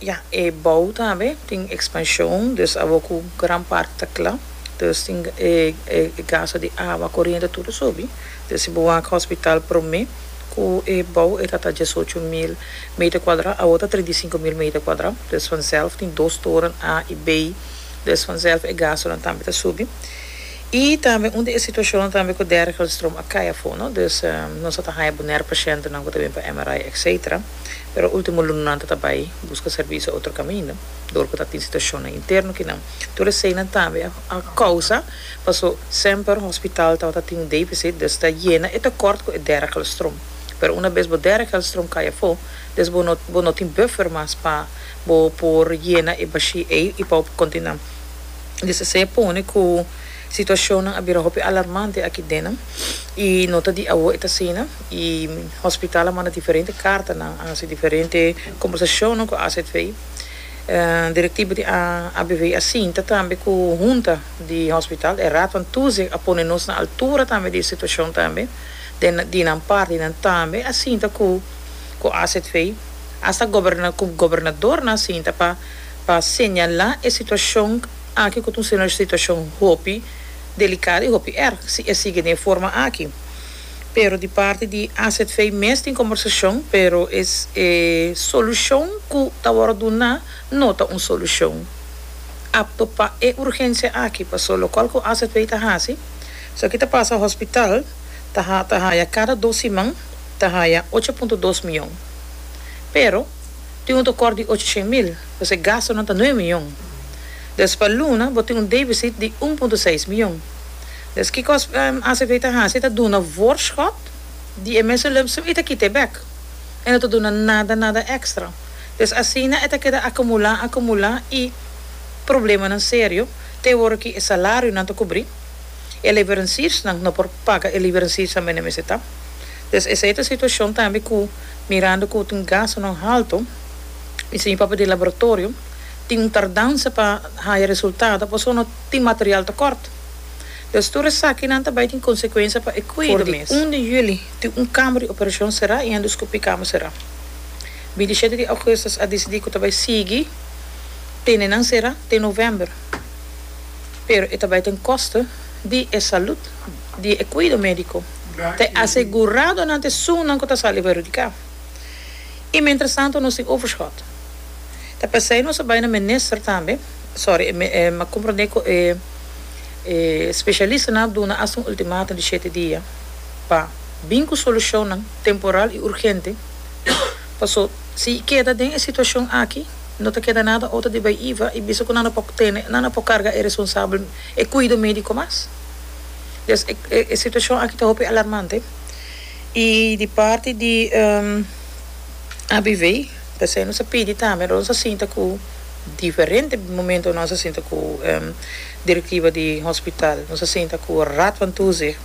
Ya, e bou tambe tin expansion, dus abo cu gran parti ta cla, dus tin e e gasto di awa, coriente tur a subi, dus si bo wak hospital prome cu e bou e ta ta diesocho mil meter cuadra, awo ta trinta i sinku mil meter cuadra, dus vanzelf tin dos toren A y B, dus vanzelf e gastonan tambe ta subi, y tambe un di e situacionnan tambe cu Dergelstroom a cay afo, no, dus nos a ta haya bonaire pacientenan cu ta bini pa MRI, etcetera. pero ultimo lunanan ta ta bai buska servisio otro kaminda dor ku ta tin situashonnan interno kinan. Tur eseinan tambe a a kousa paso semper hospital tabata tin un defisit des ta yena e tekort ku e dera kelstrom pero una bes bo dera kelstrom kai afó des bo no bo no tin buffer mas pa bo por yena e bashi ei i pa bo por kontinua des esei a pone ku situashonnan a bira hopi alarmante aki dena i no ta di awo e ta asina. y hospital a manda diferente cartanan, a haci diferente conversacionnan cu azv. Directiva di ABV a sinta tambe cu hunta di hospital, e Raad van Toezicht a pone nos na altura tambe di e situacion tambe, den di nan parti nan tambe a sinta cu cu azv, hasta goberna cu gobernadornan a sinta pa pa señala e situacion aki cu ta un situacion hopi delicado y hopi erg si e sigue den e forma aki. pero di parti di azv mes tin combersacion pero e solucion cu ta worde duna no ta un solucion apto pa e urgencia aki paso locual cu azv ta haci so aki ta pasa hospital ta haya cada dos siman ta haya ocho punto dos miyon pero tin un tocor di ocho shen mil paso e gastonan ta nuebe miyon dus pa luna bo tin un deficit di un punto seis miyon. Des kikos acp ta hasi ta duna voorschot di e mesulipsum y ta kita e bek. E no ta duna nada nada extra. Des asina e ta keda acumula acumula y problemanan serio te e wor ki e salarionan ta cubri, e leverensiersnan no por paga e liverensiersan bende mester ta. Des esey ta situacion tambe cu mirando cu tin gastonan halto y señor papel di laboratorio tin un tardansa pa haya resultado pasobra no tin material tokort. Los tur esakinan ta bai tin konsekuensia pa e kuido mes. For di un di juli tin un kama di operashon será i endoskopi kama será. Bintishete di ougustus a disidí ku ta bai sigui tene nan será te novèmber, pero e ta bai den koste di e salùt di e kuido médiko t'e asegurado nan t'e sunnan ku ta sali perhudiká. I mientras tanto nos tin overshot. Ta p'esei nos a bai na minister tambe. sorry, e a comprende cu e specialistanan a duna asta un ultimatum di shete dia pa bin cu solucionnan temporal y urgente, paso si e keda den e situacion aki no ta keda nada otro di bay iva y bisa cu nan a por tene, nan a por carga e responsable, e cuido medico mas. Des e situacion aki ta hopi alarmante y di parti di ABV, P'esei nos a pidi tambe nos a sinta ku diferente momento nos a sinta ku direktiva di hospital, nos a sinta ku Raad van Toezicht,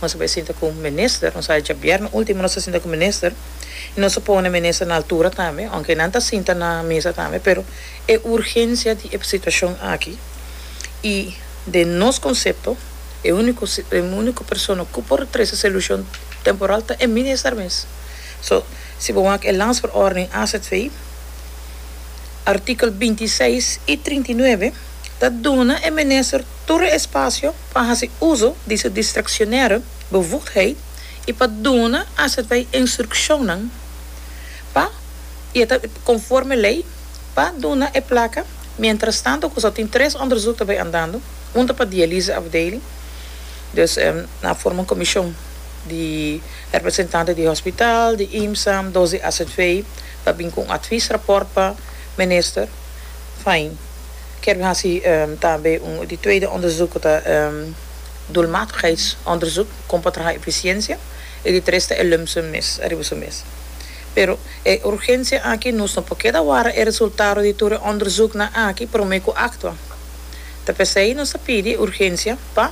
nos a bai sinta ku minister, nos a hecha bierna ultimo nos a sinta ku minister i nos a pone minister na altura tambe, ounke nan ta sinta na mesa tambe pero e urgensia di e situashon aki i den nos konsepto e úniko e úniko persona ku por trese solushon temporal ta e minister mes. So, si bo wak e Landsverordening AZV, artikel binti i seis i trinta i nuebe ta duna e minister tur e espasio pa hasi uso di su diskresionere bevoegdheid i pa duna AZV instrukshonnan pa, i e ta konforme lei, pa duna e plaka mientrastantu ku so tin tres onderzoek ta bay andando, un ta pa dialyseafdeling, dus na forma un komishon di. Representante di hospital, di IMSAM, dos di AZV pa bin cu un advis rapport pa Minister. Fijn. Kier bin haci tambe un di tweede onderzoek cu ta e doelmatigheidsonderzoek, con pa traha eficiencia, y di tres ta e lump sum mes ariba su mes. Pero e urgencia aki nos no por keda wara e resultado di tur e onderzoeknan aki prome cu actua. Ta p'esey nos ta pidi urgencia pa.